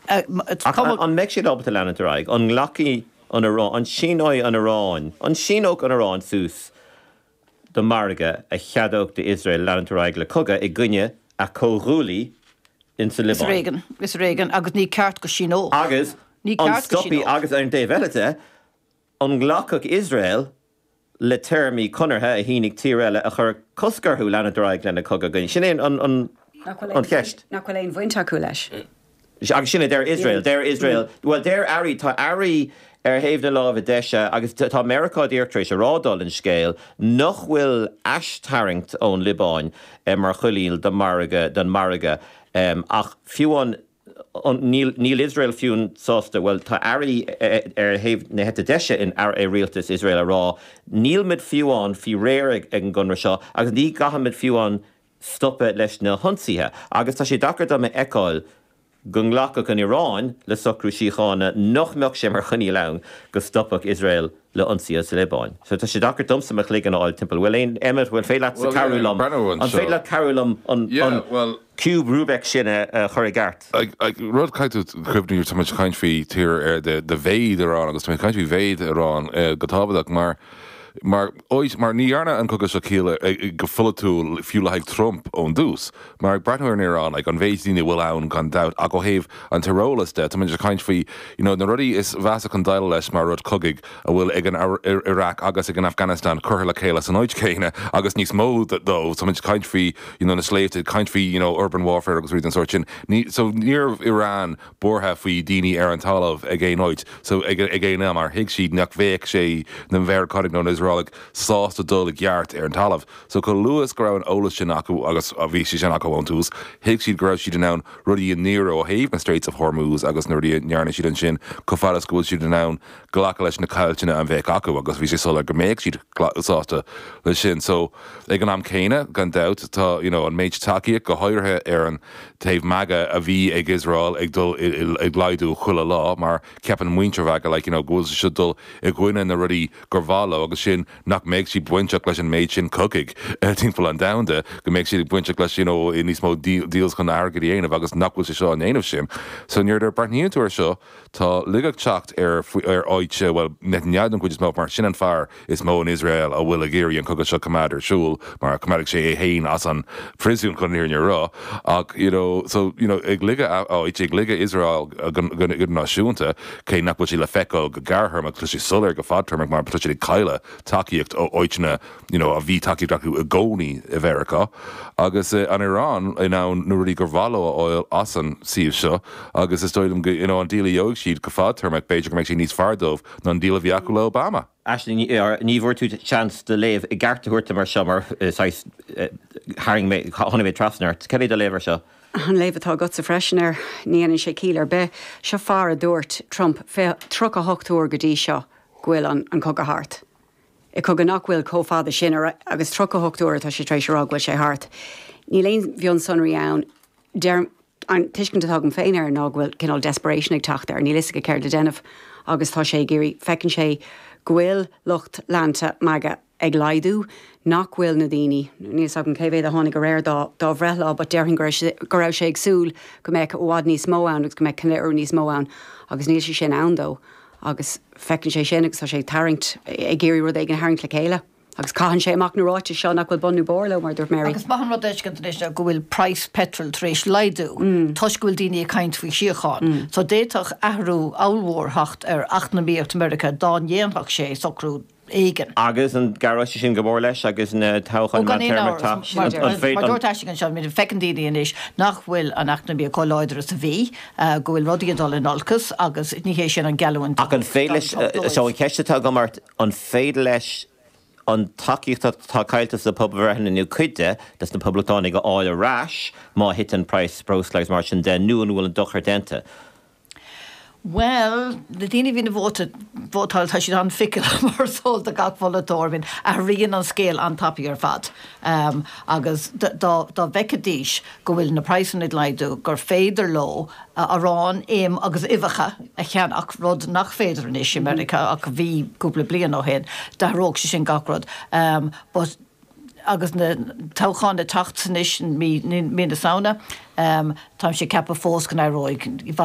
Ach an mbeidh siad ábalta leanúint ar aghaidh? An nglacfaidh an Iráin, an síneoidh an Iráin, an síneodh an Iráin suas do mhargadh a cheadódh d'Iosrael leanúint ar aghaidh le cogadh i gcoinne a comhghuaillí in sa Liobáin? Is ar éigean, agus ní ceart go síneodh. Agus an stopfadh, agus ar an dtaobh eile de, an nglacfadh Iosrael le téarmaí conartha a shínigh tír eile a chuireann cosc orthu leanúint ar aghaidh lena gcogadh againn. Sin é an cheist. nach bhfuil aon bhaint acu leis. Agus sin a deir Iosrael. Deir Iosrael, bhuel, deir airí, tá airí ar thaobh na láimhe deise agus tá Meiriceá díreach tar éis a rá dála an scéil nach bhfuil aistharraingt ón Liobáin mar choinníoll don mhargadh ach fiú amháin Níl Iosrael fiú amháin sásta, bhuel, tá airí ar thaobh na heite deise i rialtas Iosrael ag rá, níl muid fiú amháin faoi réir ag an gconradh seo agus ní gcaithfidh muid fiú amháin stopadh leis na hionsaithe. Agus tá sé deacair dom a fheiceáil go nglacfadh an Iaráin le socrú síochána nach mbeadh sé mar choinníoll ann go stopfadh Iosrael le ionsaí sa Liobáin. So tá sé deacair domsa mo chloigeann a fháil timpeall. Bhfuil aon Emmet, bhfuil féidir leatsa cabhrú liom. Well, yeah, breathnú anseo. An féidir leat cabhrú liom an, an Yeah, well. ciúb Rubik sin a, a chur i gceart? Ag, ag rud caithfidh tú cuimhniú nuair táimid ag caint faoi tír ar de, de mhéid Iran agus táimid ag caint faoi mhéid Iran eh, go tábhachtach mar, mar, oid, mar ní dhearna an cogadh seo ciall ar, ar, go pholaitiúil fiú le haghaidh Trump ón dtús. Mar ag breathnú ar an Iaránaigh, an mhéid daoine a bhfuil ann gan dabht, ach ó thaobh an tíreolas de, táimid ag caint faoi you know na rudaí is mheasa chun déileáil leis mar rud cogaidh a bhfuil ag an Iraq agus ag an Afghanistan curtha le chéile san áit chéanna agus níos mó dó so táimid ag caint faoi you know na sléibhte ag caint faoi you know urban warfare agus rudaí den sórt sin ní so níorbh Iran buartha faoi daoine ar an talamh ag aon áit so ag ag aon am mar thuig siad nach bheadh sé na Mheiriceánaigh nó na Iosraelaigh sásta dul i gceart ar an talamh. So chomh luath is go raibh an eolas sin acu, agus bhí sé sin acu ón tús, thuig siad go raibh siad in ann rudaí a ndéanamh ó thaobh na Straits of Hormuz agus na rudaí a ndearna siad ansin chomh fada is go bhfuil siad in ann glacadh leis na caillteanna a bheadh acu agus bhí sé soiléir go mbeadh siad sásta leis sin. So ag an am céanna gan dabht tá you know an méid tacaíocht go háirithe ar an taobh MAGA a bhí ag Iosrael ag dul ag laghdú chuile lá mar ceapann muintir MAGA like you know go bhfuil siad ag dul i gcoinne na rudaí gur mhaith leo agus sin nach mbeidh siad bainteach leis an méid sin cogaidh timpeall an domhanda, go mbeidh siad bainteach leis níos mó deals chun airgead a dhéanamh agus nach bhfuil sé seo á ndéanamh sin. So nuair a breathnaíonn tú ar seo tá uilig ag teacht ar ar áit, bhuel Netanyahu den chuid is mó mar sin an fear is mó in Iosrael a bhfuil ag iarraidh an cogadh seo coimeád ar siúl mar coimeádfaidh sé é féin as an phríosún chun fhírinne a rá ach you know so you know ag ligeadh áit, ag ligeadh Iosrael go náisiúnta. Cé nach bhfuil sé le feiceáil go gearrthéarmach tá sé soiléir go fadtéarmach mar tá siad ag cailleadh tacaíocht ó áiteanna you know a bhí tacaíocht acu i gcónaí i Mheiriceá agus an Iran in ann na rudaí gur mhaith leo a fháil as an suíomh seo agus is dóigh liom go you know an díl a gheobhaidh siad go fadtéarmach b'fhéidir go mbeidh sé níos fearr dóibh ná an díl a bhí acu le hObama. Aisling Ní Fhearraigh, ní bhfuair tú seans do léamh i gceart a thabhairt domsa ar seo mar saghas tharraing mé, tháinig mé trasna ort. Cad é do léamh ar seo? An léamh atá agatsa freisin air, ní dhéanann sé ciall ar bith. Seo fear a dúirt, Trump, 38 uair go dtí seo go bhfuil an cogadh thart. I cogadh nach bhfuil chomh fada sin agus 38 uair atá sé tar éis a rá go bhfuil sé thart. Níl aon mhionsonraí ann. deirim, an tuiscint atá agam féin air ná go bhfuil cineál desperation ag teacht air, níl 'fhios aige céard le déanamh agus tá sé ag iarraidh, feiceann sé go bhfuil lucht leanta MAGA ag laghdú, nach bhfuil na daoine, níl 'fhios agam cé mhéad a tháinig aréir dá dá bhreithlá but déarfainn go raibh go raibh sé ag súil go mbeadh i bhfad níos mó ann agus go mbeadh ceiliúradh níos mó ann agus níl sé sin ann dó agus feiceann sé sin agus tá sé ag tarraingt, ag iarraidh rud éigin a tharraingt le chéile. Agus caitheann sé amach na ráitis seo nach bhfuil bun nó barr leo, mar a dúirt Mary. Agus maith an rud fheiscint anois seo go bhfuil praghas peitril tar éis laghdú toisc go bhfuil daoine ag caint faoi shíocháin. So d'fhéadfadh athrú ollmhór teacht ar eacnamaíocht Mheiriceá dá ndéanfadh sé socrú éigin. Agus an gcuideodh sé sin go mór leis agus na toghcháin meántéarma, tá an Mar a dúirt Aisling anseo, feiceann daoine anois nach bhfuil an eacnamaíocht chomh láidir is a bhí, go bhfuil rudaí ag dul in olcas agus ní hé sin an geallúint So an cheist atá agam ort, An féidir leis an tacaíocht atá caillte sna pobalbhreitheanna, nó cuid de, dos na Poblachtánaigh a fháil ar ais má thiteann praghas breosla agus mar sin de, nó an bhfuil an dochar déanta? Bhuel, na daoine a bhíonn ag vótáil tá siad an-fickle mar is eol do gach polaiteoir. Athraíonn an scéal an-tapaidh ar fad agus dá bhfeicidís. go bhfuil na praghsanna ag laghdú, gur féidir leo arán, im agus uibheacha a cheannach, rud nach féidir anois i Meiriceá ach a bhí cúpla bliain ó shin, d'athródh sé sin gach rud. But agus na toghcháin ag teacht anois, mí na Samhna, táimse ag ceapadh fós go n-athróidh.